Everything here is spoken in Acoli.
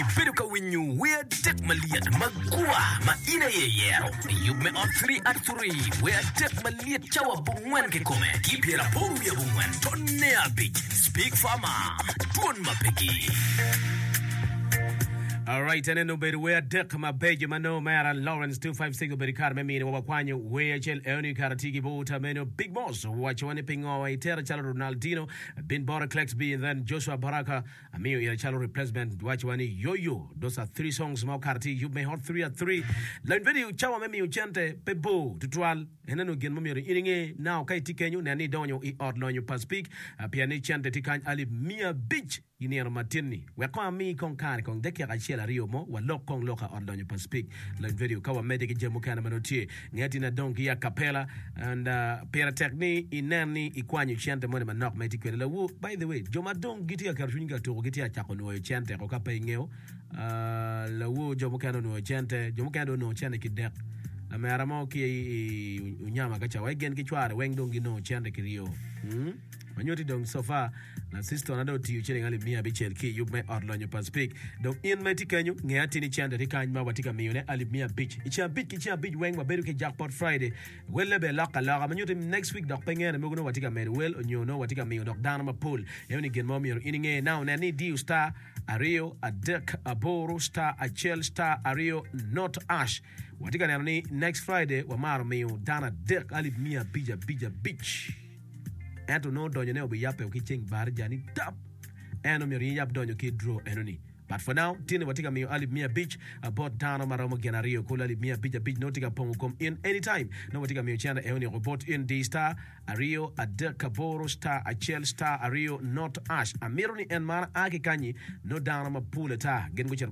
Ibedo ka winyo wer adek malyet ma gua ma in aye iyero i yub me ot 3 at 3 wer adek malyet cawa abongwen kikome ki pyeraboro wiye abongwen tonne abic speak fama twon ma pegi Alright, enene obedo wer adek mabeco ma nongo Mera Lawrence 256 obedo i kare me mine wa wakwanyo wer acel eoni kara tye ki buta meno Big Boss owacowa ni pingo wa itera calo Ronaldinho, I've been bought a Clex B and then Joshua Baraka Amiyo ira calo replacement waco wa ni yo yo those are three songs ma okato ti yub me hot three at three lawiny bedi cawa me miyo cente pe bor tutwal ene nongo gin ma myero in inge now ka iti kenyo nen ni idonyo i ot lonyo pa speak pien ni cente ti kany alip miya abic i nino ma tin ni wek kong ami kong kare kong dakika acel aryo mo wa lok kong loka ot lonyo pa speak lawiny bedi ka wa mede ki jami mukene ma nongo tye Nge tin adong ki akapela and uh, pire tek ni inen ni ikwanyo cente moni manok ma itye kwede lawu. By the way, jo ma dong gitye ka keto cwinygi ka tuku gitye ka cako nwoyo cente ko ka pe ingeyo. Uh, lawu jo mukene onwoyo cente, jo mukene dong onongo cente ki dek. Lamera mo ki i, i Unyama kaca, wa igen ki cware weng dong ginongo cente ki ryo. Hmm? Ma nyuti dong so far Laciston ado otiyo ciling alip miya abicel ki i yub me ot lonyo pa Spik. Dong in ma itye kenyo, nge atini cente tye kany ma watye ka miyone alip miya abic. I ceng abic ki ceng abic weng wabedo ki Jackpot Friday. Welle bene lok aloka. Ma nyuti next week dok pe ngene mogo nongo watye ka medo wel onyo nongo watye ka miyo dok dano mapol. Eno ni gin ma omyero in inge. Now nen ni idiyo star aryo adek aboro star acel star aryo not ash. Watye ka neno ni next Friday wamaro miyo dano adek alip miya abic abic abic. Ento nongo donyone obiyabbe o ki ceng barija ni dap. En omyero in yab donyo ki i draw enoni. But for now, tye ni watye ka miyo alip miya abic bot dano ma romo gin aryo. Kulu alip miya abic abic nongo tye ka pongo kom in anytime. Nongo watye ka miyo cene enoni oko bot in diy star aryo adek aboro star acel star aryo not ash. Amito ni en man a ki kanyi nongo dano mapol ata gin gucito.